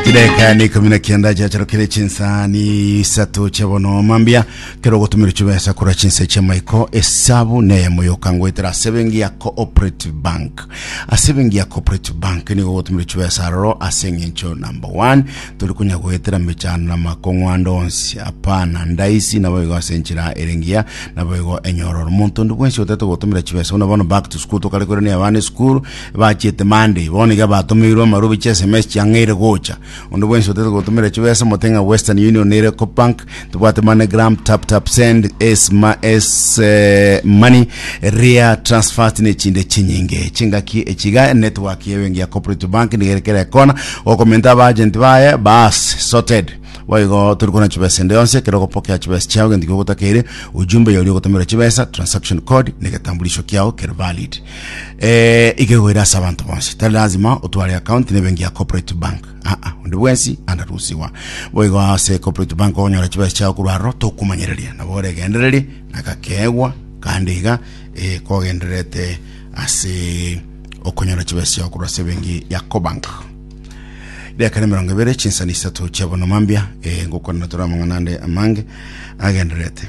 chideka ni ikumi na kianda chiacharokire chinsa ni isato chia bono mambia kero ogotumira chibesa korwa chinsa chia maiko esabu neye moyoka ngoetera ase bengi ya cooperative bank ase bengi ya cooperative bank nigo ogotumira chibesa aroro ase eng'encho number one tori konya goetera mechando na makong'wando onsi apana ndaisi nabo igo ase enchera erengiya nabo igo enyororo monto ndi bwensi otete gotumira chibesa buna bono back to school tokare korania abana esukuru Bachiete Monday, bono iga batomeirwe amarobi ch'SMS chiang'eire gocha. Onde bwensi otaete gotomera chibesa omote ng'a Western Union na Ecobank, tobwate MoneyGram, TapTapSend, SMS Money, Ria Transfast na echinde chinyinge. Chingaki echi iga enetwork y'ebenki ya Cooperative Bank niga ere kera ekona, okomenta abaagenti baye baas, sorted. Boigo tori korenda chibesa ende yonsi, ekero ogopokea chibesa chiao gento kia ogotakeire, ujumbe yauri ogotomerwa chibesa, transaction code, na egetambulisho kiao kere valid. Eh, ikegoira ase abanto bonsi tari lazima otware account na ebenki ya corporate bank aa ah, onde bwensi andarusiwa boigo ase corporate bank ogonyora chibesa chiao korwa aroro tokumanyereria nabo oregendereri nagakegwa kandi iga eh, kogendererete ase okonyora chibesa chiao korwa ase ebenki ya cobank dakika na mirongo ibere chinsani isato chiabona mambia eh, ngokorana tore amang'ana ande amange agendererete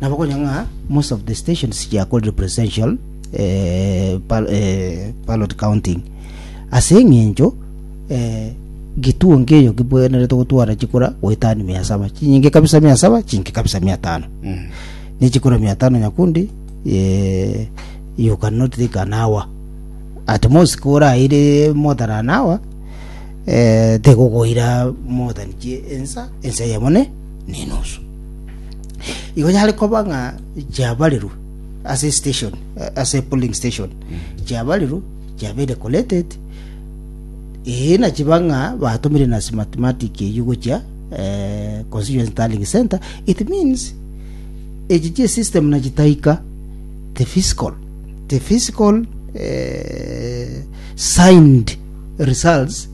nabo konya ng'a most of the stations chiakorire presidential eh, bal- eh, ballot counting ase eng'encho eh, gituo nkeyo kibwenerete gotwara chikura goetani mia saba chinyinge kabisa mia saba chinke kabisa mia tano ne chikura mia tano nyakundi eh, you cannot take an hour at most koraire more than an hour eh, tegokoira more than chi- ensa ensa yamone nenusu. Igo yare koba ng'a chiabarirwe ase station eh, ase polling station chiabarirwe chiabeire collected ee na chiba ng'a batumire na smartmatic eyio gochia eh, constituency tallying center it means echi chie system na chitaika the physical the physical eh, signed results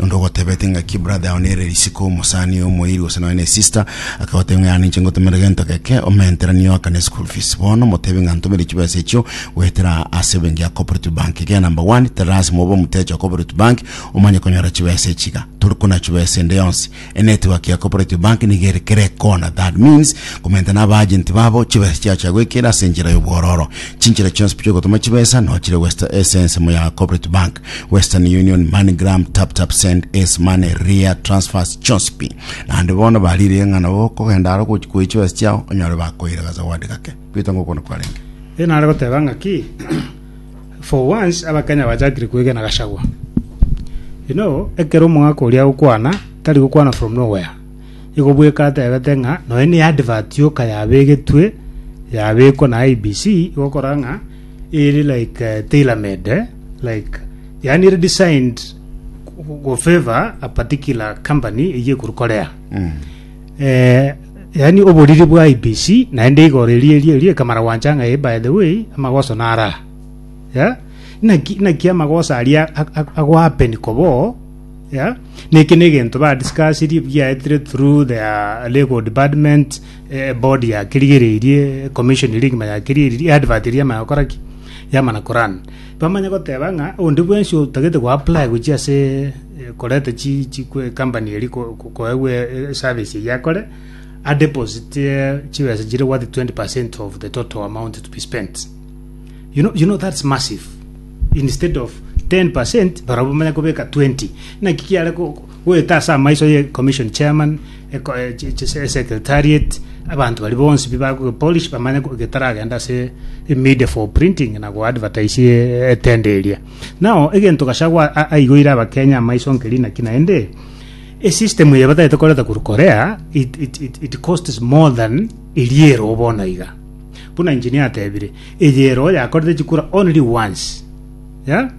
Onde ogotebete ng'aki ebrother yao nere risiko, omosani, omoiri, gose nonya na esister, akagotebia ng'a yara ninche ngotomere gento geke, omenteranie oakane eschool fees. Bono motebie ng'a ntomire chibesa echio goetera ase ebenki ya Cooperative Bank. Egera number one, tari lasima obe omotecha o Cooperative Bank omanye konyora chibesa echi iga. Tori konaa chibesa ende yonsi. E network ya Cooperative Bank nigo ere kera ekona, that means komenta na abaagenti babo chibesa chiao chiagoikera ase enchera y'obwororo. Chinchera chionsi chi'ogotoma chibesa nao chire West- ase ensemo ya Cooperative Bank, Western Union, MoneyGram, TapTapSend, Ace Money, Ria, Transfers, chionsi pi. Naende bono bariire ng'a nabo okogenda aro gochi- koyia chibesa chiao onyore bakoire akazawadi gake. Peter ngokona kwarenge. Ee nare goteba ng'aki? For once abakenya bachakire kwegena Gachagua. You know ekero omogaka oria agokwana tari gokwana from nowhere. Igo bweka atebete ng'a nonya ne advert yoka yabegetwe yabekwa na IBC igokora ng'a ere like eh, tailor made eh, like yani ere designed go favor a particular company eye ekuru Korea. eh, Yaani oboriri bwa IBC naende igoro erio erio erio ekamara gwancha ng'a eh, by the way amagoso nare aa. Yeah? Naki naki amagoso aria ag- ag- agohappen koba oo, yeah? Neki negento ba discussirie giaetire through their legal department, eh, board yakerigereirie, commission eria egima yakerigereirie, advert eria yamana gokora ki? Yamana korun. Bamanye goteba ng'a onde bwensi otagete goapply gochia ase koreta chi chi company eria ko- ko- koegwa e- e- eservice eyio akore, adeposite chibesa chire worth 20% of the total amount to be spent. You know, you know that's massive. Instead of 10% barabwo bamanye kobeka 20. Naki kiare ko- ko- Goeta ase amaiso ye commission chairman, eko- eh, chi- chi- se- secretariat, abanto baria bonsi bi bagoge polish bamanye go- getaragende ase media for printing na go advertise eh, etende eria. Nao egento Gachagua a- aigoire abakenya amaiso nkeri naki naende esystem eye batagete koreta korwa Korea it, it, it, it costs more than eria ero bono iga buna engineer atebire eye ero yakorete chikura only once yeah?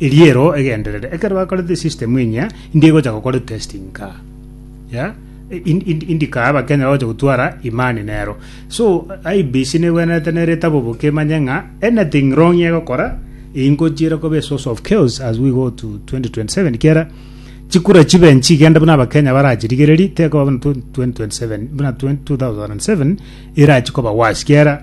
Eriero egenderere ekero bakorete esystem enyia indi egocha gokora testing kaa yeah? in- in- indi kaa abakenya bagocha gotwara imani nero so IBC negwenerete nere etaboboke emanye ng'a anything wrong egokora ingochire koba a source of chaos as we go to 2027 kiera chikura chibe nchigende buna abakenya barachirigererie tekoba buna 2027 buna 2007 erachikoba wasi kiera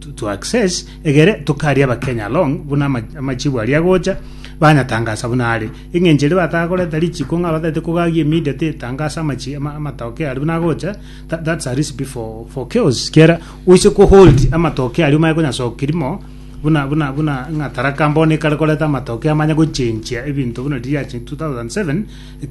to, to access egere tokaria abakenya along buna ama- amachibu aria gocha banyatangasa buna are eng'encheri batagoreta richiko ng'a batete kogagia immediate etangasa amachi ama- amatokeo aria buna gocha tha- that's a recipe for, for chaos kiera oise kohold amatokeo aria omanye konyasoki rimo buna buna buna ng'a taraka mbono ekare koreta amatokeo amanye gochenchia ebinto buna riria riachia 2007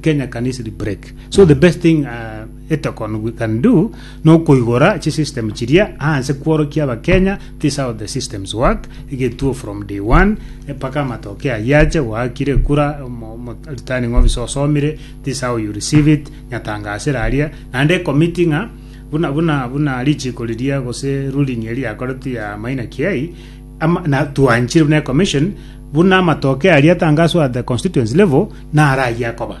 kenya can easily break so the best thing uh, Etokono we can do nokoigora chi system chiria anse kworokia abakenya this how the systems work egetuo from day one mpaka amatoke ayio ache goakire kura omo- omo- returning officer osomire this how you receive it nyatangasire aria naende ekomiti ng'a buna buna buna richiko riria gose ruling eria yakoretwe ya maina kiai ama- na twanchire buna commission buna amatoke aria atangaswa at the constituency level nara ayia koba